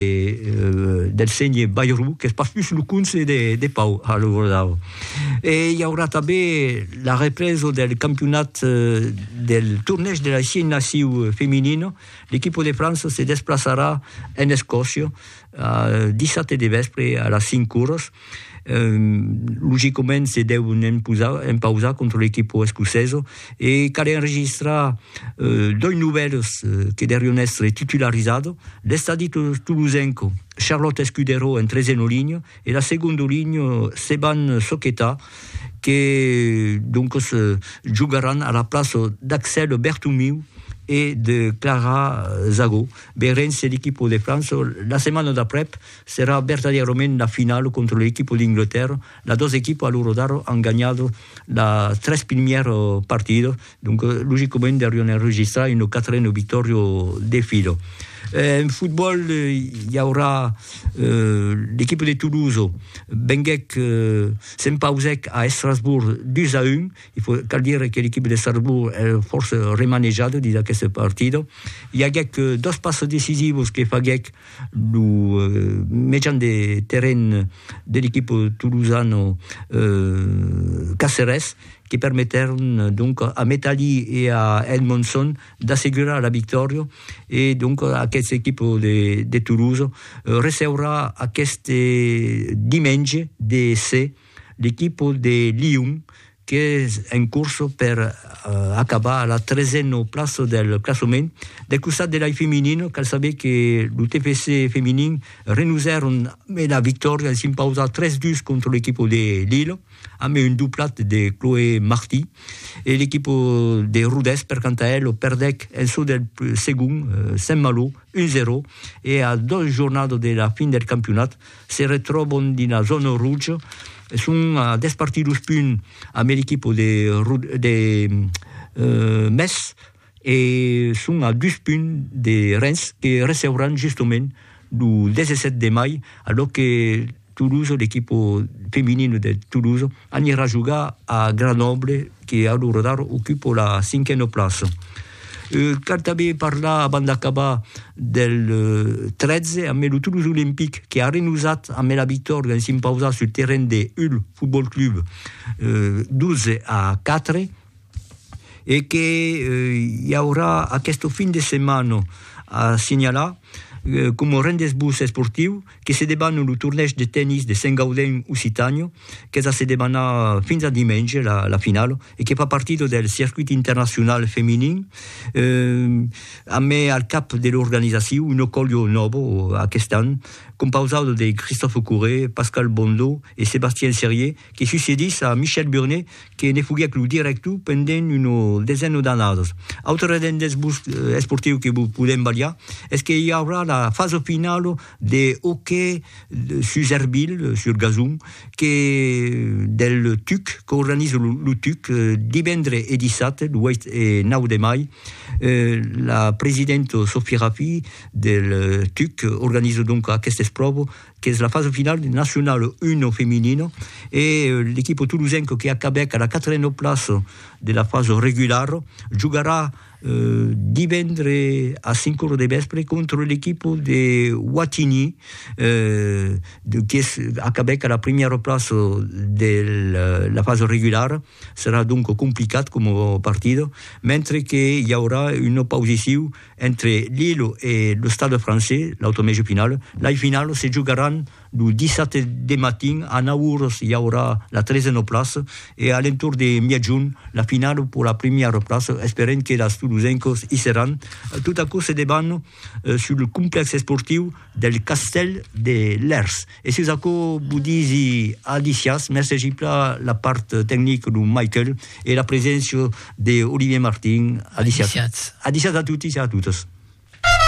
del senhè Bayrou, qu'es pas pus lo conse de Pau a lo Rodau. E i aurà tanben la represa del campionat del tornèg de la Xi Naciu Femenina. L'equipa de França se desplaçarà en Escòcia dissabte de vèspre a las 5 oras. Logicament se deu empausar contra l'equipo escoceso e cal enregistrar doi novèls que derion èstre titularizado, l'estadi tolosenco Charlot Escudero en treseno linho e la segondo linho Seban Soqueta que doncos jogaràn a la plaça d'Axèle Bertomiu e de Clara Zago. Veirem se l'equipo de França la setmana d'aprèp Serà vertadièrament la finala contra l'equipa d'Inglterra, las dos equipas a l'ora d'ara an ganhat las tres primièras partidas, donc logicament deurián enregistrar una quatrena victòria de fila. En fotbòl i aurà l'equipa de Toulouse venguèc, s'empausèc a Estrasbourg 2 a 1, il faut, cal dire que l'equipa d'Estrasbourg es fòrça remanejada dins aquesta partida, i aguèc dos passes decisivas que faguèc Lo mejan de terren de l'equip tolosano Caceres que permetèron donc a Metalli e a Edmondson d'assegurar la victòria e donc aquest equip de Toulouse receurà aqueste dimenge de se l'equip de Lyon qu'es en corsa per acabar a la tresena plaça del classament. Del costat de l'ai feminin, cal saber que lo TFC feminin renusèron a la victòria de s'impausar 3-2 contra l'equipa de Lille, amb un doblat de Chloé Marty, e l'equipa de Rodés, per canta ela, perdèc en çò del segon Saint-Malo 1-0 e a dos jornadas de la fin del campionat. Se retròbon dina zòna roja e son a dètz partidos punt ambe l'equipo de de Metz e son a dus punt de Rens que recebran justement lo 17 de mai, alò que Toulouse, l'equipo feminino de Toulouse, Anira jogar a Grenoble que a lo radar ocupa la cinquena plaça. Cal tanben parlar abans d'acabar del 13 amb lo Toulouse Olympic que a renosat amb la victòria en s'impausar sul terren de Hull Football Club 12 a 4. e que i aurà aqueste fin de setmana a signalar coma rendez-vous esportiu que se debana lo tornèish de tennis de Sent Gaudent Occitània qu'es a se debanar fins a dimenge la finala e que fa partida del circuit internacional feminin a mai al cap de l'organizacion una colha nòva aquest an compausada de Christophe Courret, Pascal Bondot e Sébastien Serier que succedís a Michel Burnet que ne foguèc lo director pendent una desena d'annadas. Autre rendent esportiu que vos podèm balhar es que i aurà la fasa finala de hoquei sus ervilh, sur gazon, que del tuc, qu'organiza lo tuc divendre e dissabte, lo 8 e 9 de mai. La presidenta Sophie Raffy del tuc organiza donc aquesta espròva qu'es la fasa finala deth Nacional Uno feminino, e l'equipo tolosenco que acabèc ara quatrena plaça de la fasa regulara, jogarà divendre as 5 ora de vèspre contra l'equipo de Wattignies, qu'es acabèc ara primièra plaça de la fasa regulara, serà donc complicat coma partida, mentre que i aurà un oposiciu Entre Lille e lo Stade Français, l'autre mètge final, lai finals se jogaràn lo dissabte de matin a 9 oras i aurà la tresena plaça e a l'entorn de miègjorn la finala per la primièra plaça, esperèm que las tolosencas i seràn. Tot aquò se debanna sul complèx esportiu del Castèl de Lèrs. E sus aquò vos disi alicias, mercegi pla la part tecnic lo Michael e la preséncia de Olivier Martin, alicias. Alicias. Alicias a totis e a totas.